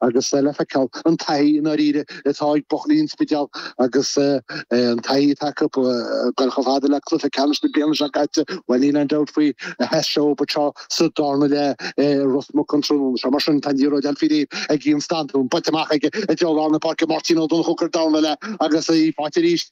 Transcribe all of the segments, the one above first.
agus le feiceáil an taithí i ndáiríre atá ag buachaillí an Spidéil agus an taithí atá acu ag goil chomh fada le cluiche ceannais na bliana seo caite, bhuel níl aon dabht faoi sheas sé dóibh anseo sa darna leath i Ros Muc an tráthnóna seo. Mar sin tá an liathróid á fáil faoi réir ag Ian Stanton, buailte amach aige i dtreo lár na páirce, Máirtín Ó Donnchadha ag cur dorn léi agus í faighte arís.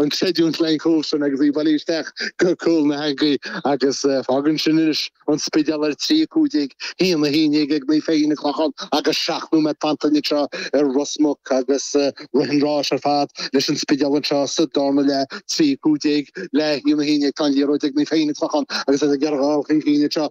an chreidiúint le haghaidh an chúil sin agus í ag bailiú isteach go cúl na heangaí agus fágann sin anois an Spidéal ar trí a cúig déag, a haon a haon déag ag Naomh Feichín an Chlocháin agus seacht nóiméad fanta againn anseo ar Ros Muc agus rith an ráis ar fad leis an Spidéal anseo sa darna leath trí a cúig déag le haon a haon déag tá an liathróid ag Naomh Feichín an Chlocháin agus iad ag iarraidh dul chun cinn anseo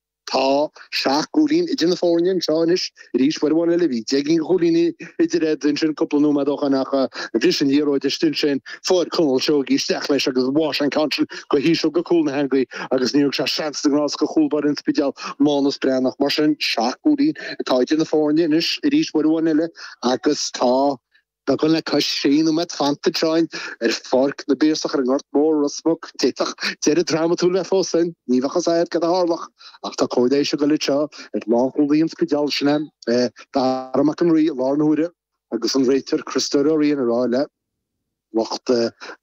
Tá seacht gcúilín idir na foirne anseo anois arís, uair amháin eile bhí deich gcinn de chúilíní idir iad, ansin cúpla nóiméad ó shin ach bhris an liathróid istigh ansin, fuair Conall Seoighe isteach leis agus bháigh sé an ceann sin go híseal go cúl na heangaí agus níor thug sé seans do Gnás do chúlbáire an Spidéil, Mánus Breathnach. Mar sin, seacht gcúilín atá idir na foirne anois arís uair amháin eile agus tá. Beagán le cois trí nóiméad fanta ansin, ar Pháirc na bPiarsach ar an nGort Mór, Ros Muc, d'fhéadfadh deireadh drámatúil bheith fós againn. Ní bheadh fhios agat céard a tharlódh ach tá cóir leighis ag goil anseo ar lánchúlaí an Spidéil, sin é Dara Mac an Rí, i láthair na huaire agus an réiteoir Criostóir Ó Riain ag rá le lucht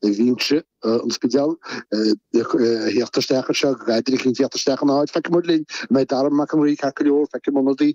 binse an Spidéil a theacht isteach anseo, go gcaithfidís a theacht isteach ina áit. Feicfidh muid linn an mbeidh Dara Mac an Rí ceart go leor, feicfidh muid ionadaí.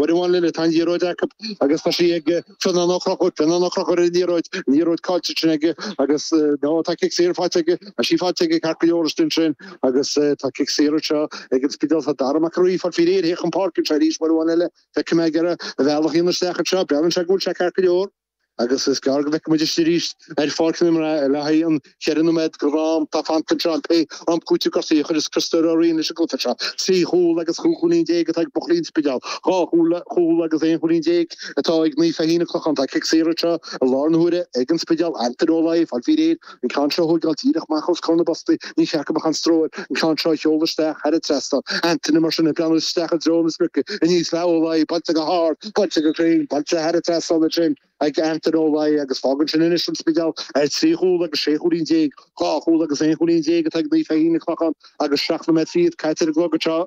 Uair amháin eile tá an liathróid acu agus tá sí ag Fionnán Ó Conchúir, Fionnán Ó Conchúir ar an liathróid, an liathróid caillte ansin aige agus nó tá cic saor faighte aige, tá sé faighte aige ceart go leor istigh ansin agus tá cic saor anseo ag an Spidéal, tá Dara Mac an Rí ag fáil faoi réir le theacht chun páirce anseo arís, uair amháin eile feicim é ar a bhealach ar ais isteach anseo, breathnaíonn sé go bhfuil sé ceart go leor. Agus is gearr go bhfeicfidh muid eisean arís ar pháirc an áir le haghaidh an cheithre nóiméad d'am atá fanta anseo nó pé am cúitimh gortuithe a chuirfeas Criostóir Ó Riain leis an gcluiche seo. Trí chúl agus cúig chúilín déag atá ag buachaillí an Spidéil. Dhá chúl agus aon chúilín déag atá ag Naomh Feichín an Chlocháin. Tá cic saor anseo i láthair na huaire ag an Spidéal, Antaine Ó Laoi, ag fáil faoi réir, An ceann seo a thógáil díreach amach os comhair na bpostaí, níor cheart go mbeadh aon stró air an ceann seo a sheoladh isteach thar an trasnán. Antaine, Mar sin, ag breathnú isteach i dtreo na sprice, aníos le Ó Laoi, buailte go hard, buailte go cruinn, buailte thar an trasnán ansin. Ag Antaine Ó Laoi, Agus fágann sin anois An Spidéal ar trí chúl agus sé chúilín déag, dhá chúl agus aon chúilín déag atá ag Naomh Feichín an Chlocháin agus seacht nóiméad fichead caite ar an gclog anseo.